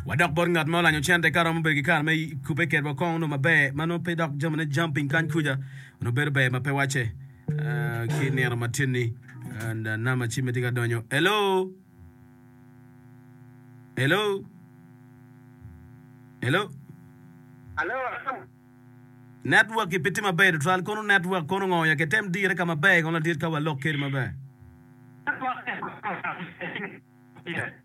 Wadok bot ngat ma olanyo cente ka romo bedo ki kare me kubbe kedwa kong onongo maber ma nongo pe dok jamine jam piny kany kuca onongo bedo ber ma pe wacce ah, ki nino matin-ni and ah, nama cimme tye ka donyo hello hello hello Alo, network i pe tye maber tutwal kono network kono ngo ya kitem dire ka maber kono ladit ka walok kedi maber network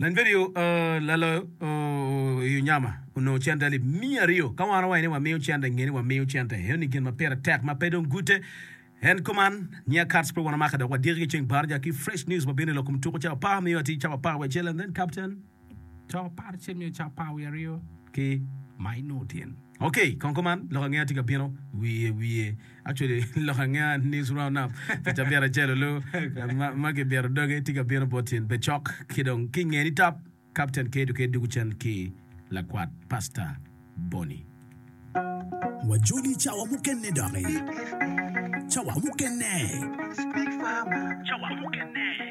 Langedo laloyo i onyama onongo cente alip miya aryo. Ka wano waye ni wamiyo cente, nge ni wamiyo cente. Eno ni gin ma pire tek ma pe dong gute. En kuman, Nia Cards pe wan omake dok wadiki ki ceng Barja ki fresh news ma bino i lok kom tuku cawa par miyo atir cawa par wiye acel and then captain cawa par acel miyo cawa par wiye aryo ki Maino Otieno. Okay, kong kuman lok ange atye ka bino wiye wiye. Actually lok ange news round up pi cabit acel olu ma ki bito doge tye ka bino bot in becok ki dong ki nge ni tap captain ke duke dugu cen ki lakwat pasta Bonnie. Wa joli cawa mukene doki. Cawa mukene. Cawa mukene.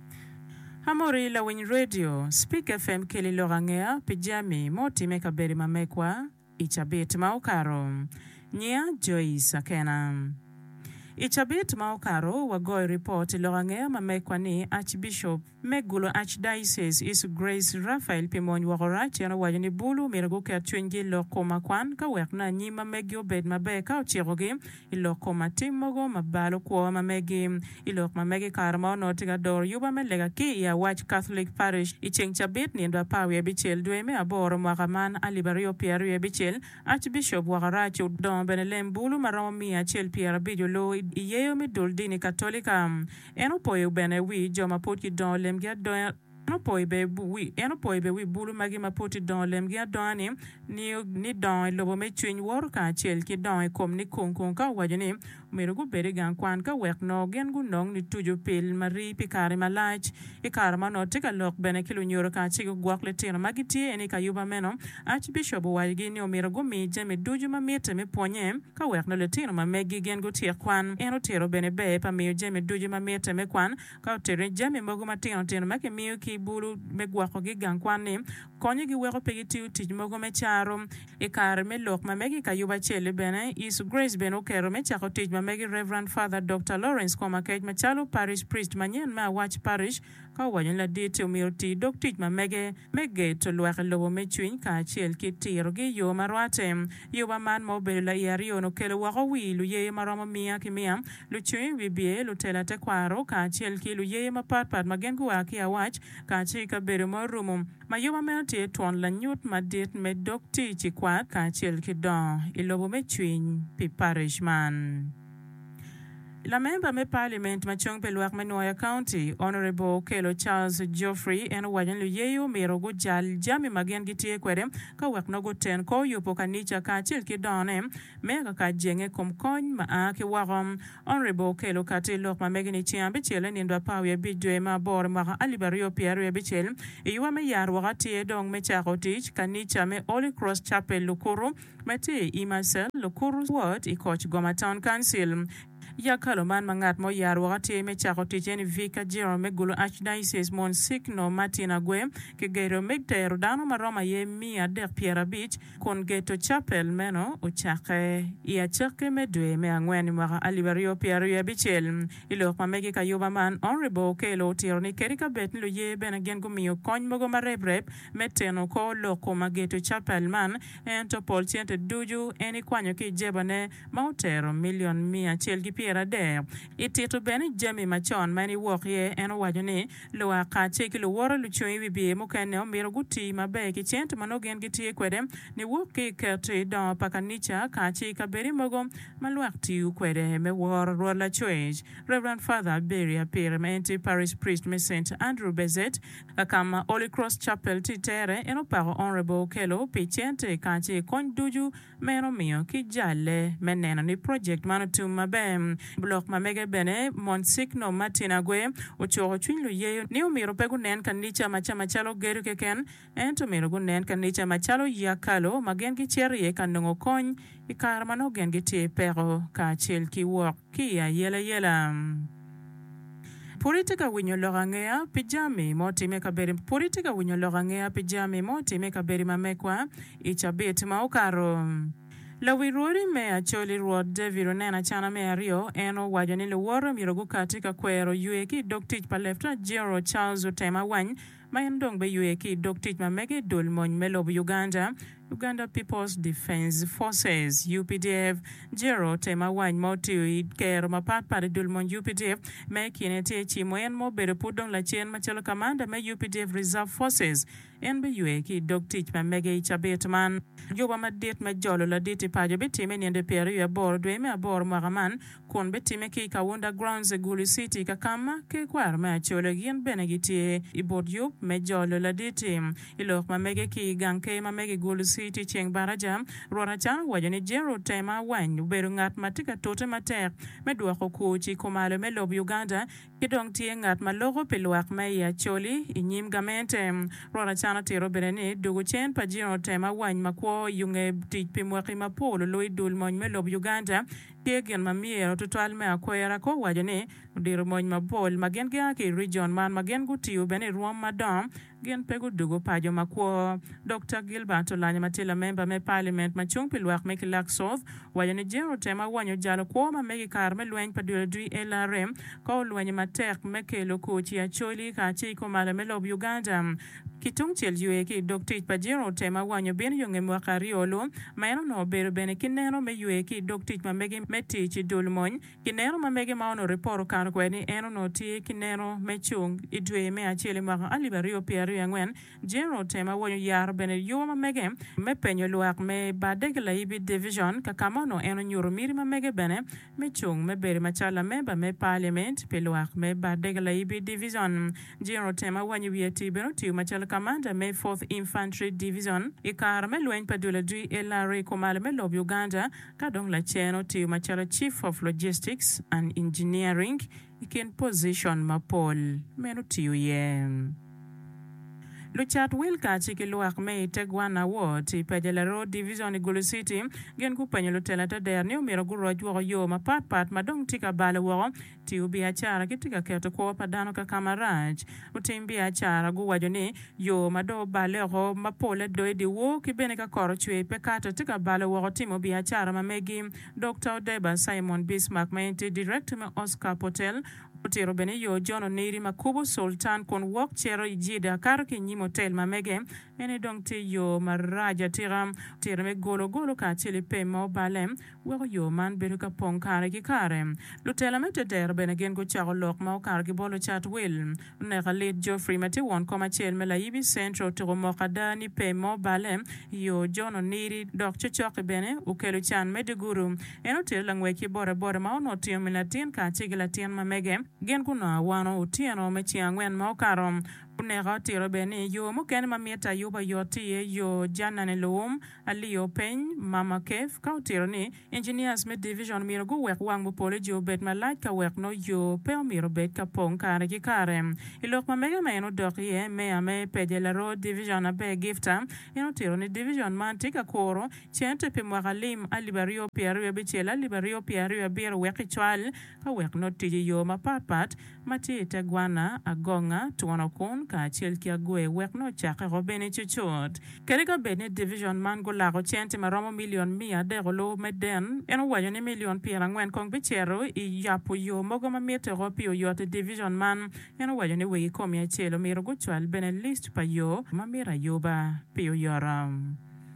Amory, lawiny redio, Spik FM Keli lok angeya pi jami ma otimme i kabedo ma megwa i cabit ma okato. Nyinga Joyce Akena. I cabit ma okato, wagoyo ripot i lok angeya ma megwa ni Archbishop me Gulu Archdiocese Isu Grace Raphael pi mony woko rac. En owaco ni Bulu myero guket cwinygi i lok kom akwan ka wek na nyim ma meggi obed maber ka ocikogi. I lok kom atim mogo ma balo kwo ma megi, i lok ma megi i kare ma onongo tye ka doro yuba me lega ki i Awac Catholic Parish, i ceng cabit nindo apar wiye bicel dwe me aboro mwaka man alip aryo pyer aryo bicel, Archbishop Wakarac odongo bene lem bulu ma romo miya acel pyer abic olu i yeyo me dul dini Katolika. En opoyo bene wi jo ma pud gidongo lemgi adonga. En opoyo bene wi bulu magi ma pud tye dongo lemgi adonga ni, ni dongo i lobo me cwiny woto kacel ki dongo i kom ni kung kung ka owaco ni omyero gubed i gang kwan ka wek nongo gin gunong ni tucu pil ma rii pi kare malac. I kare ma onongo tye ka lok bene ki lunyodo ka ci gugwok litino ma gitye en i kayuba meno, Archbishop owacigi ni omyero gumi jami ducu ma mitte me pwonye ka wek nongo litino ma meggi gin gutyek kwan. En otito bene ber pa miyo jami ducu ma mitte me kwan Ka oterre, jami mogo matino tino ma kimiyo ki i bulu me gwokogi i gang kwan-ni konyogi weko pe gitiyo tic mogo me caro. I kare me lok ma mege i kayubo acel-li bene, Yecu Grace bene oketo me cako tic ma mege Rev. Father Dokta Lawrence Komakec macalo Parish Priest manyen me Awac Parish. Ka owaco ni ladit-ti omyero oti dog tic ma mege, me geto lwak i lobo me cwiny kacel ki tirogi i yo ma rwatte. Yoba man ma obedo lai aryo-ni okelo woko wi luye ma romo mia ki mia, lucwiny wibye, lutela tekwaro, kacel ki luye mapatpat ma gin gua ki awac kacel ki kabedo ma orumo. Ma yoba meno tye twon lanyut madit me dog tic i kwat kacel ki dongo i lobo me cwiny pi parish man. Lamemba me Parliament ma cung pi lwak me Nwoya County, Honourable Okello Charles Geoffrey en owaco ni luyeyo omyero gujal jami ma gin gitye kwede ka wek nongo guten kor yubo kanica kacel ki dongone me akaka jenge ikom kony ma a ki woko. Honourable Okello okato i lok ma mege ni ceng abicel nindo apar wiye abic dwe me aboro mwaka alip aryo pyer aryo abicel i yuwa me yat woko atir dong me cako tic kanica me Holy Cross Chapel Lukuru ma tye i Marseille, lukuto wot i koc Goma Town Council. Yag kalo man ma ngat ma oyar woko atir me cako tic eni Vicar General me Gulu Archdiocese Monsignor Martin Agwe ki gedo me tero dano ma romo aye miya adek pyera abic kun geto Chapel meno ocakke i acakki me dwe me angwen i mwaka alip aryo pyera aryo abicel. I lok ma mege ka ayuba man, Honourable Okello otiro ni kadi ka bed ni luye bene gin gumiyo kony mogo ma rep rep me teno kor lok ko ma geto Chapel man, Ento pol cente ducu en ikwanyo ki i jebane, ma otero milion miya acel ki pyerade. I tito bene jami macon ma en iwok iye, en owaco ni, Lwak kacel ki luwote lucung i wibye mukene omyero guti maber ki cente ma nongo gin gitye kwede niwok ki i keto i dongo pa kanica kacel i kabedi mogo ma lwak tiyo kwede me woro Rwot Lacwec. Rev. Father Aberi Apiri ma en tye Parish Priest me Saint Andrew Bezet, Ka ka ma Holy Cross Chapel tye tere, en opako Honourable Okello pi cente kacel ki kony ducu ma en omiyo ki jalle me neno ni project man otum maber. Bulok ma mege bene, Monsigno Martin Agwe, ocuko cwiny luyeyo ni omyero pe gunen kanica ma ca macalo gedo keken, ento omyero gunen kanica macalo yekalo ma gin gicito iye ka nongo kony. i kare ma nongo gin gitye i peko kacel ki wok ki i ayelayela. Pud itye ka winyo lok angeya pi jami ma otimme i kabedi Pud itye ka winyo lok angeya pi jami ma otimme i kabedi ma megwa i cabit ma okato? Lawi rwodi me Acholi Rwot David oneno acana me aryo. En owaco ni luwote myero gukati ka kwero ywe ki i dog tic pa Leftenant General Charles Otem Awany, ma en dong beywe ki i dog tic ma mege i dul mony me lobo Uganda, Uganda People's Defence Forces, UPDF. Jero te ma wany ma otiyo i kero mapat pat i dul mony UPDF ma i kine tye Cimo en ma obedo pud dong lacen macalo kamanda me UPDF Reserve Forces. En beywe ki i dog tic ma mege i cabit man. Juba madit me jolo ladit i paco bitime i nino dwe pyeraryo aboro dwe me aboro mwaka man kun bitimme ki i Kaunda Grounds i Gulu City, Kakama, ki kwaro me Acholi gin bene gitye i but yub me jolo laditi i lok ma mege ki i gang ker ma mege i Gulu City ceng baraja. Rwot Acang owaco ni Gerald Tema Awany obedo ngat ma tye ka tute matek me dwoko kwo ci kumalo me lobo Uganda, Ki dong tye ngat ma loko pi lwak ma i Acholi i nyim gamente. Rwot Acana tito bene ni dugo cen pa jino otem awany makwo i unge tic pi mwaki mapol olu i dul mony me lob Uganda tye gin ma myero tutwal me akwera ko waco ni odiro mony mapol ma gin gia ki i region man ma gin gutiyo bene i rwom madongo Gin pe gudugo paco makwo. Dokta Gilbert Olanyo ma tye lamemba me Paliament ma cung pi lwak me Kilak South owaco ni jeri otemo awonyo jalo kwo ma mege i kare me lweny pa dwelodwi LRM ka olwenye matek me kelo kwo ci Acholi kacel ki komale me lob Uganda ki tungcel ywe ki i dog tic pa jeri otemo awanyo bino yo nge mwaka aryo lu ma en onongo obedo bene ki neno me ywe ki i dog tic ma mege me tic i dul mony Ki neno ma mege ma onongo ripot okato kwede ni en onongo tye ki neno me cung, i dwe me acel i mwaka alip aryo pyera aryo i angwen, General otemo awonyo yaro bene yowa ma mege me penyo lwak me badde ki laibi divicion ka ka ma onongo en onyuto miti ma mege bene me cung me bedo macalo lamemba me paliament pi lwak me badde ki laibi divicion. General otemo awanyo wiye ti bene otiyo macalo kamanda me Fourth Infantry Divicion i kare me lweny pa dul adwi LRA kumalo me lob Uganda, ka dong lacen otiyo macalo Chief of Logistics and Engineering i kin pozicon mapol meno tiyo iye. Lucat Wilkach ki lwak me i Tegwana Ward i Pajala Road Division i Gulu City gin gupenyo lutela te dero ni omyero guroc woko yo mapatpat ma dong tye ka balo woko Tiyo biacara kitye ka keto kwo pa dano kaka marac. Lutim biacara guwaco ni yo ma dong oballe oko ma pole do i dyewor ki bene ka kor ocwer pe kato tye ka balo woko timo biacara ma megi. Dokta Odeba Simon Bismark ma en tye Director me Oscar Potel otito bene yo John Oniri ma kubo Sultan kun wok cito i Jeddah kato ki i nyim otel ma mege. Eni dong tye yo marac atika. Otito me golo golo kacel i pem ma oballe. weko yo man bedo ka pong kare ki kare. Lutela me tetere bene gin gucako lok ma okato ki bolo cat wil. Oneka lit Geoffrey ma tye won kom acel me Layibi Central otuko moko ada ni pe mo balle i yo, John Oniri dok cocoki bene okelo can me digudu. En otere langwec ki bodaboda ma onongo otingo min latin kacel ki latin ma mege. Gin gunongo awano otyeno me ceng angwen ma okato. Oneka otito bene ni yo mukene ma mitte ayuba yot tye i yo Janani Luwum. Aliyo peny Mama Keith ka otito ni, Engineers me Division myero guwek wang mupolloji obed malac ka wek no yo pe omyero obed ka pong kare ki kare. I lok ma mege ma en odok iye, Meya me Peje Laro Division Aber Gifta en otito ni Division man tye ka kuro cente pi mwaka lim alip aryo pye aryo abicel alip aryo pye aryo abiro wek kicwal ka wek nongo tic i yo mapat pat ma tye i te gwana, agonga, twono kun, kacel ki agwer wek nongo cakke oko bene cucut. Kadi ka bed ni division man gulako centi ma romo milion miya adek olubo me den, en owaco ni milion pyer angwen kong bicito i yabo yo mogo ma mitte oko pi oyot i division man. En owaco ni wegi komi acel omyero gucwal bene list pa yo ma mito ayuba pi oyoto.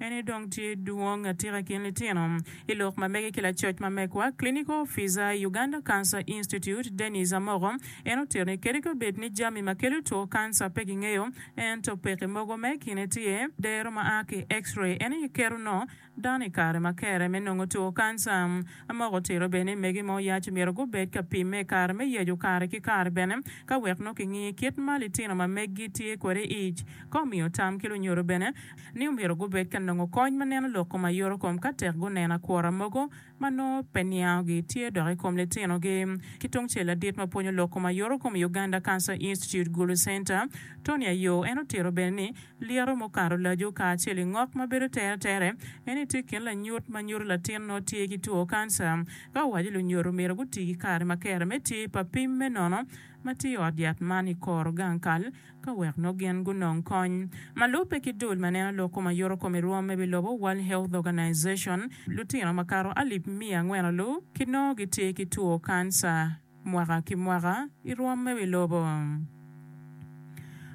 En aye dong tye dwong atika i kin litino i lok ma mege ki lacoc ma megwa, Clinical Officer, Uganda Cancer Institute, Dennis Amoko. En otito ni kadi ka bed ni jami ma kelo two kanca pe kingeyo, ento pekki mogo me kine tye, dero ma a ki X-ray en aye keto no dano i kare ma kere me nongo two kanca. Amoko otito bene ni mege ma oyac omyero gubed ka pimme i kare me yecu kare ki kare bene ka wek nongo kingi kit ma litino ma meggi tye kwede ic ka omiyo tam ki lunyodo bene. ni omyero gubed ka nongo kony ma neno lok kom aye kom ka tek guneno akwora mogo ma nongo pe niangogi tye dok i kom litinogi. Ki tungcel, ladit ma pwonyo lok kom aye kom i Uganda Cancer Institute Gulu Center, Tony Ayoo, en otito bene ni, Lyeto mukato laco kacel i ngok ma bedo tere tere en ni tye kin lanyut ma nyuto latin nongo tye ki two kanca. Ka owaco lunyodo omyero guti ki kare ma kera me tye pa pim me nono ma tye i ot yat man i kor gang kal ka wek nongo gin gunong kony. Ma lubbe ki dul ma neno lok kom ayuto kom i rwom me bilobo World Health Organization, lutino ma kato alip miya angwen-lu ki nongo gitye ki two kanca mwaka ki mwaka i rwom me bilobo.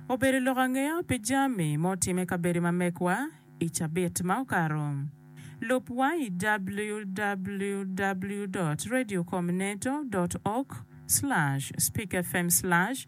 Obedo lok angeya pi jami ma otimme i kabedo ma megwa i cabit ma okato. Lub wa i www dot radio com neto dot org slash speak fm slash